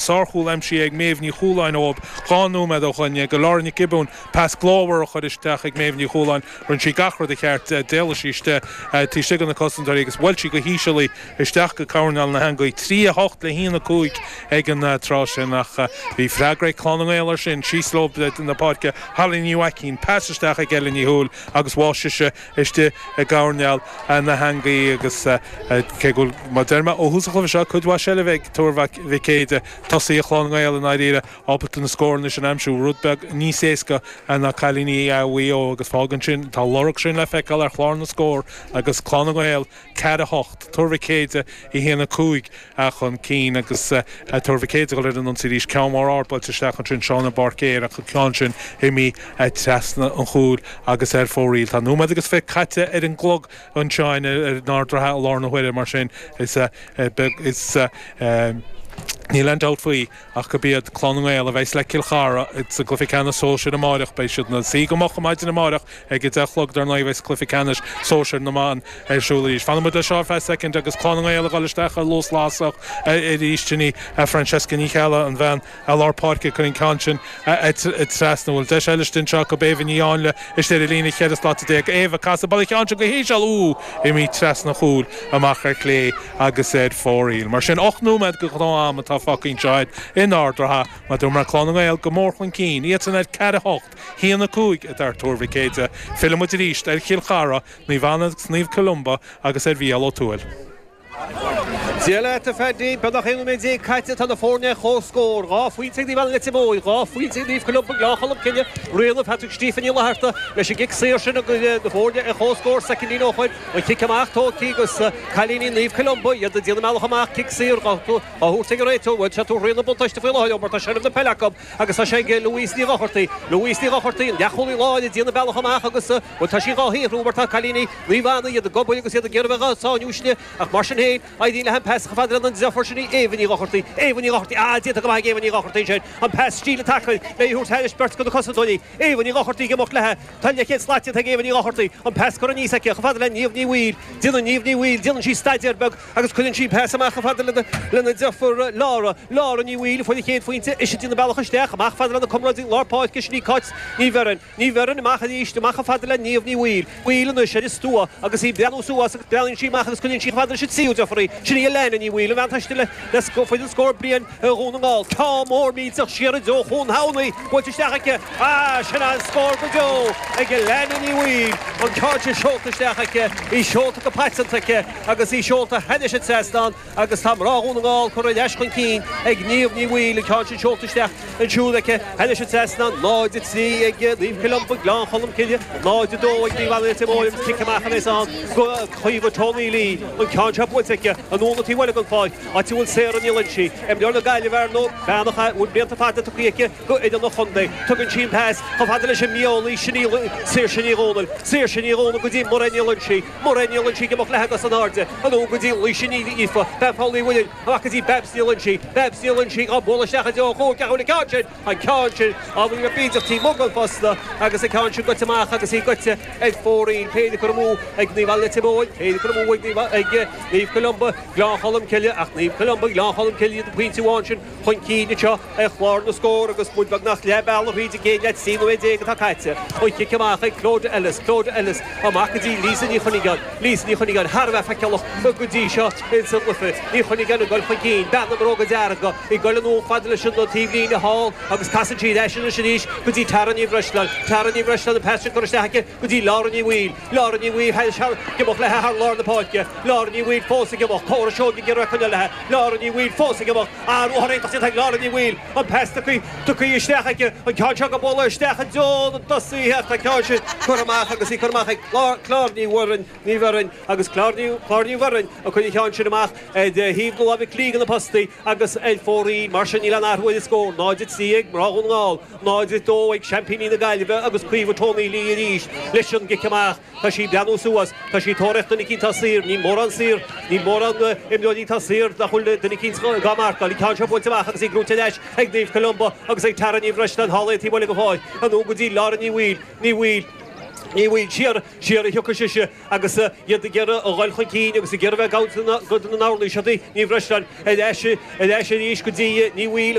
Sárchúl aimsithe ag Méabh Ní Chualáin ó dhá nóiméad ó shoin, go Laura Nic Giobúin, pas glórmhar a chuir isteach ag Méabh Ní Chualáin, rinne sí gach rud i gceart, d'éalaigh sí isteach taobh istigh de na cosantóirí agus bhuail sí go híseal í isteach go coirneál na heangaí, trí a hocht le a haon a cúig ag an tráth sin ach bhí freagra ag Clann na nGael ar sin, síos leo an pháirc Holly Ní Mhaicín, pas isteach ag Ella Ní Shúil agus bháth sise, istigh i gcoirneál na heangaí agus cé go bhfuil, mar a deir mé ó thús an chluiche seo, cuid mhaith seilbhe ag Tuar Mhic Éadaigh, tosaithe Chlann na nGael i ndáiríre ábalta na scóranna sin a aimsiú rud beag níos éasca ná cailíní Mhaigh Eo agus fágann sin, tá a lorg sin le feiceáil ar chlár na scór agus Clann na nGael 4 8, Tuar Mhic Éadaigh, 1 5 a chun cinn agus Tuar Mhic Éadaigh ag dul ar an ionsaí arís, ceann mór ard buailte isteach ansin san aer ach an ceann sin imithe trasna an chúil agus ar fóraoil. Tá nóiméad agus fiche caite ar an gclog anseo in Ard an Rátha i lár na huaire mar sin is níl aon dabht faoi. Ach gurb iad Clann na nGael a bheas le Cill Chartha sa gcluife ceannais sóisir amáireach, beidh siad ina suí go moch maidin amáireach ag a deich a chlog dar ndóigh a bheas cluife ceannais sóisir na mban ar siúl arís. Fanfaidh muid leis seo ar feadh soicind agus Clann na nGael ag dul isteach ar luas lasrach arís. Ginny, Francesca Ní Cheallaigh, an bhean lár páirce, ag cur an ceann sin. trasna. Bhuel, deis eile anseo acu Éabha Ní Áinle istigh ar líne cheithre slata déag. Éabha, ag casadh, buaileann sí an ceann seo go híseal, úúú, imithe trasna an chúil, amach ar chlé agus ar fóraoil. Mar sin, ocht nóiméad de ghnáth-am atá fágtha anseo in Ard a' Ratha. Mar dúirt mé, Clann na nGael go mór chun cinn. Iadsan ar ceathair a hocht, a haon a cúig atá ag Tuar Mhic Éadaigh. Fillfidh muid arís ar Chill Chartha, Naomh Anna agus Naomh Columba agus ar Mhícheál Ó Tuathail. Dia leat a Phaddy. Beagnach 11 nóiméad caite, tá na foirne ar comhscór. Dhá phointe ag Naomh Anna Leitir Móir, dhá phointe ag Naomh Columba Gleann Cholm Cille. Réabadh isteach ag Stephanie Ní Fhlatharta leis an gcic saor sin agus na foirne ar comhscór soicindí ó shin an cic amach tógtha agus cailíní Naomh Columba iad ag déanamh a mbealach amach. Cic saor dhá thabhairt ag an réiteoir, bhuel, sé atá a rá, an buntáiste faoi láthair leo mar tá seilbh na peile acu. Agus tá sé ag Louise Ní Dhochartaigh. Louise Ní Dhochartaigh, an leathchúlaí láir, ag déanamh a bealach amach agus, bhuel, tá sí dhá shaothrú mar tá cailíní Naomh Anna, iad ag obair agus iad ag iarraidh bheith sa mullach uirthi, ach mar sin féin, éiríonn léi an pas a chur fhad lena deirfiúr sin, Éabha Ní Dhochartaigh. Éabha Ní Dhochartaigh, ah, déanta go maith ag Éabha Ní Dhochartaigh ansin, an pas stíle tacaíochta léi a thabhairt thar bheirt de na cosantóirí. Éabha Ní Dhochartaigh ag imeacht leithe. Tá leathchéad slat déanta ag Éabha Ní Dhochartaigh, an pas curtha aníos aici chomh fada le Niamh Ní Bhaoill. Déanann Niamh Ní Bhaoill, déanann sí staidéar beag. Agus cuireann sí pas amach chomh fada lena deirfiúr Laura, Laura Ní Bhaoill, a fuair an chéad phointe, ise ag déanamh a bealach isteach, amach chomh fada lena comrádaí lár páirce sin í Cáit Ní Bheirn, Ní Bheirn amach arís, amach chomh fada le Niamh Ní Bhaoill, Bhaoill anois ar an stua agus í ag breathnú suas agus breathnaíonn sí amach agus cuireann sí chomh fada leis an tríú deirfiúr í, sin í Elaine Ní Bhaoill, an bhean taistil faoi scór bliain. ar Dhún na nGall. Ard mór millteach isteach i dtreo chúinne na heangaí buailte isteach aici ach sin an scór go deo ag Lauren Ní Bhaoill, an ceann seo seolta isteach aici, í seolta go paiteanta aici agus í seolta thairis an trasnán agus tá mná Dhún na nGall curtha ar ais chun cinn ag Niamh Ní Bhaoill, an ceann sin seolta isteach ansiúd aici thairis an trasnán. 0-3 ag Naomh Columba, Gleann Cholm Cille, 0-2 ag Naomh Anna, Leitir Móir agus cic amach a bheas ann do Caoimhe Trá Ní Lee, an ceann seo buailte aici, anonn go dtí Mhoileagan, fáil. áit a bhfuil Sarah Ní Loingsigh. Imreoir na Gaillimhe ar ndóigh, bean a chaith blianta fada tugtha aici go hidirchontae. Tugann sí an pas chomh fada leis an miollaí sin í Saoirse Ní Dhomhnaill. Saoirse Ní Dhomhnaill go dtí Máire Ní Loingsigh. Máire Ní Loingsigh ag imeacht léithi agus in airde. Anonn go dtí Laoise Ní Aoife, bean Phaul Uí Mhuilinn, amach go dtí Babs Ní Loinsigh. Babs Ní Loinsigh á bualadh isteach i dtreo chúil ceathrúil an ceann sin. an ceann sin, ábhairín beag taobh amuigh den phosta, agus an ceann sin goite amach agus í goite ar fóraoil, roinnt cur amú ag Naomh Anna Leitir Móir, roinnt cur amú ag Naomh Columba Gleann Cholm Cille, ach Naomh Columba Gleann Cholm Cille iad an pointe amháin sin chun cinn anseo ar chlár na scór agus muid beagnach leath bealaigh thríd an gcéad leath, trí nóiméad déag atá caite. An cic amach ag Clodagh Ellis, Clodagh Ellis amach go dtí Lisa Ní Chuinneagáin, Lisa Ní Chuinneagáin thar a bheith feiceálach go dtí seo insan gcluiche, Ní Chuinneagáin ag goil chun cinn, bean na mbróga dearga, Ag goil anonn fad leis an taobhlíne thall agus casann sí ar ais anois arís go dtí Tara Ní Bhreisleáin. Tara Ní Bhreisleáin an pas sin curtha isteach aici go dtí Laura Ní Bhaoill. Laura Ní Bhaoill ag imeacht léithi thar lár na páirce. Laura Ní Bhaoill fós ag imeacht. Córa Seoige ag iarraidh coinneáil léithi. Laura Ní Bhaoill fós ag imeacht. Ah, ruathar iontach déanta ag Laura Ní Bhaoill. An pas tugtha isteach aici. An ceann seo dhá bualadh isteach i dtreo na dtosaithe ach tá an ceann sin curtha amach agus í curtha amach ag Clár Ní Mhuirinn. Ní Mhuirinn, agus Clár Ní Mhuirinn a chuir an ceann sin amach ar thaobh na láimhe clé de na postaí agus ar fóraoil mar sin. Níl aon athrú ar an scór, 0-3 ag mná Dhún na nGall, 0-2 ag seaimpíní na Gaillimhe agus Caoimhe Tony Lee arís leis an gcic amach. Tá sí ag breathnú suas, tá sí ag tóraíocht duine eicínt atá saor, níl mórán saor, níl mórán imreoirí atá saor nach bhfuil duine eicínt dhá marcáil. An ceann seo buailte amach agus í brúite ar ais ag Naomh Columba agus ag Tara Ní Bhreisleáin thall ar an taobh thall den pháirc, anonn go dtí Lauren Ní Bhaoill, Ní Bhaoill, Ní Bhaoill, siar, Siar a thiocfadh sise agus iad ag iarraidh a dhul chun cinn agus ag iarraidh bheith ag amharc go dona n-amharlaíseadaí Ní Bhreisleáin ar ais arís go dtí Ní Bhaoill,